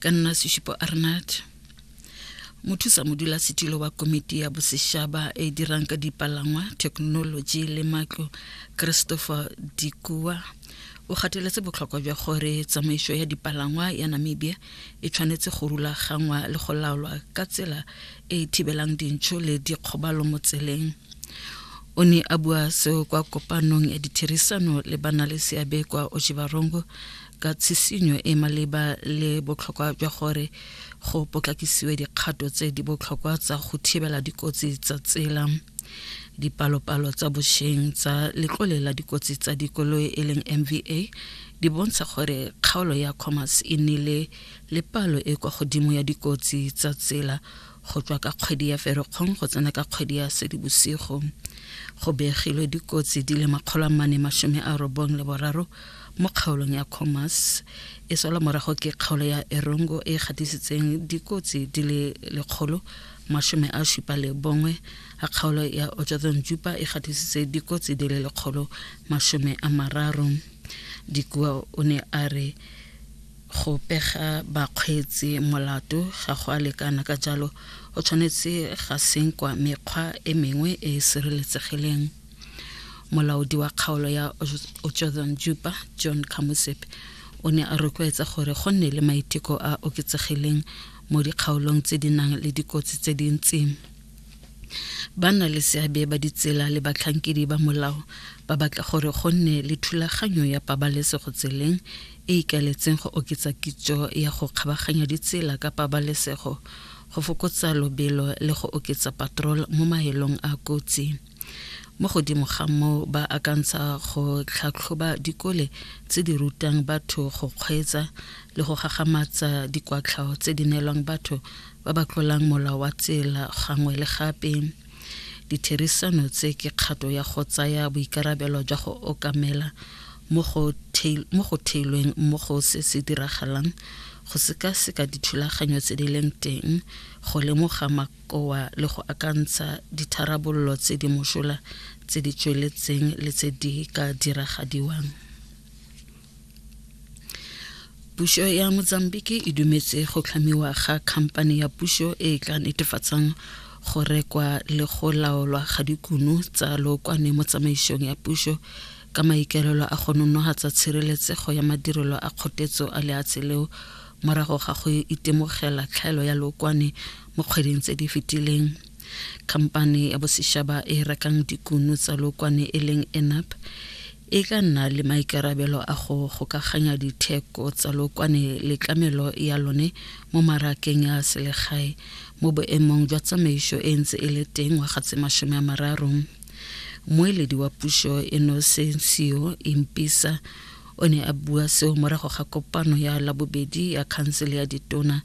ka nna seshupo arnat mothusa modulasetilo wa komiti ya bosešaba e dirang ka dipalangwa thekenoloji le matlo christopher dikua o gateletse botlhokwa jwa gore tsamaiso ya dipalangwa ya namibia e tshwanetse go rulagangwa le go laolwa ka tsela e e thibelang dintšho le dikgobalo mo tseleng o ne a bua seo kwa kopanong ya ditherisano le bana le seabe kwa ojibarongo ka tshisinyo e maleba le botlhokwa jwa gore go potlakisiwe dikgato tse di botlhokwa tsa go thibela dikotsi tsa tsela dipalopalo tsa bosheng tsa letlole la dikotsi tsa dikoloi e leng mva di bontsha gore kgaolo ya commerce e nnile le palo e kwa godimo ya dikotsi tsa tsela go tswa ka kgwedi ya Ferikgong go tsena ka kgwedi ya Sedibosigo. Go begilwe dikotsi di le makgolo a mane masome a robong le boraro mo kgaolong ya Khomas e sola morago ke kgaolo ya Erongo e gatisitseng dikotsi di le lekgolo masome a supa le bongwe a kgaolo ya Ochathon Jupa e gatisitse dikotsi di le lekgolo masome a mararo. Dikua o ne a re Go pega bakgweetsi molato ga go a lekana, ka jalo go tshwanetse ga senkwa mekgwa e mengwe e e sireletsegileng. Molaodi wa kgaolo ya Otjozan Jupa, John Kamusepe, o ne a rotloetsa gore go nne le maiteko a oketsegileng mo dikgaolong tse di nang le dikotsi tse dintsi. Banna le seabe ba ditsela le batlhankedi ba molao ba batla gore go nne le thulaganyo ya pabalesego tseleng e ikaeletseng go oketsa kitso ya go kgabaganya ditsela ka pabalesego go fokotsa lobelo le go oketsa patrol mo maelong a kotsi mo godimo ga moo ba akantsha go tlhatlhoba dikole tse di rutang batho go kgweetsa le go gagamatsa dikwatlhao tse di neelwang batho ba ba tlolang molao wa tsela gangwe le gape Ditherisano tse ke kgato ya go tsaya boikarabelo jwa go okamela mo go theilweng mo go se se diragalang go sekaseka dithulaganyo tse di leng teng go lemoga makoa le go akantsha ditharabololo tse di mošola tse di tsweletseng le tse di ka diragadiwang pušo ya mozambique e dumetse go tlhamiwa ga khamphane ya pušo e e tla netefatsang go rekwa le go laolwa ga dikuno tsa lookwane mo tsamaišong ya pušo ka maikelelo a go nonogatsa tshireletsego ya madirelo a kgotetso a leatshe leo morago ga go itemogela tlhaelo ya lookwane mo kgweding tse di fetileng khamphane ya bosešaba e rekang dikuno tsa lookwane e leng enap e tla nna le maikarabelo a go gokaganya ditheko tsa lokwane le tlamelo ya lone mo marakeng ya selegae mo boemong jwa tsamaiso e ntse e le teng ngwaga tse masome a mararo. Moeledi wa puso Inocencio Impisa o ne a bua seo morago ga kopano ya labobedi ya khansele ya ditona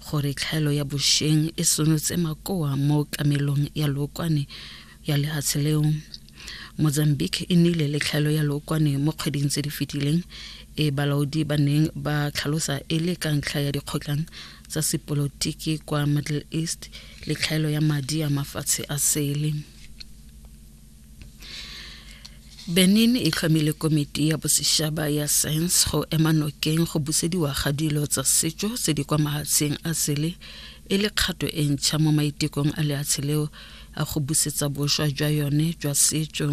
gore tlhaelo ya bosheng e sonotse makoa mo tlamelong ya lookwane ya lehatshe leo. mozambique e nnile le tlhaelo ya lookwane mo kgweding tse di fetileng e balaodi ba neng ba tlhalosa e le ka ntlha ya dikgotlang tsa sepolotiki kwa middle east le tlhaelo ya madi a mafatshe a sele benin e tlhomile komiti ya bosešaba ya science go ema nokeng go busediwa ga dilo tsa setso tse di kwa mahatsheng a sele e le kgato e ntšha mo maitekong a leatshe leo a go busetsa boswa jwa yone jwa setso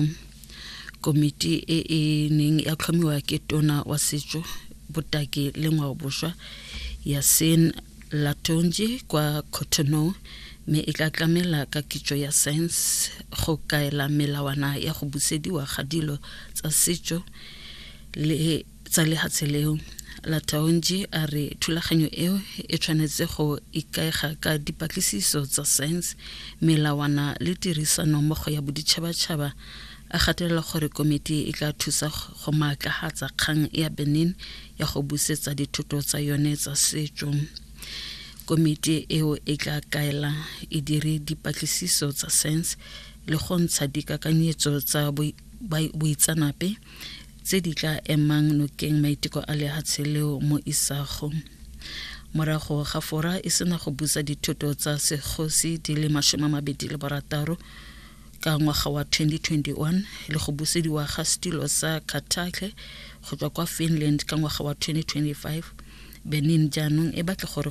komiti e e neng ya tlhomiwa ke tona wa setso botaki le ngwaoboswa ya sen latonji kwa cotonou mme e tla tlamela ka kitso ya science go kaela melawana ya go busediwa ga dilo tsa setso le tsa lehatshe leo lataonji a re thulaganyo eo e tshwanetse go ikaega ka dipatlisiso tsa science melawana le tirisano mmogo ya boditšhabatšhaba a gatelela gore komiti e tla thusa go maatlagatsa kgang ya benin ya go busetsa dithoto tsa yone tsa setšo komiti eo e tla kaela e dire dipatlisiso tsa science le go ntsha dikakanyetso tsa boitsanape tse di tla emang nokeng maiteko a lehatshe leo mo isago morago ga fora e sena go busa dithoto tsa segosi di le masome a mabedi le barataro ka ngwaga wa 2021 le go busediwa ga setilo sa Carthage go tswa kwa Finland ka ngwaga wa 2025 Benin jaanong e batla gore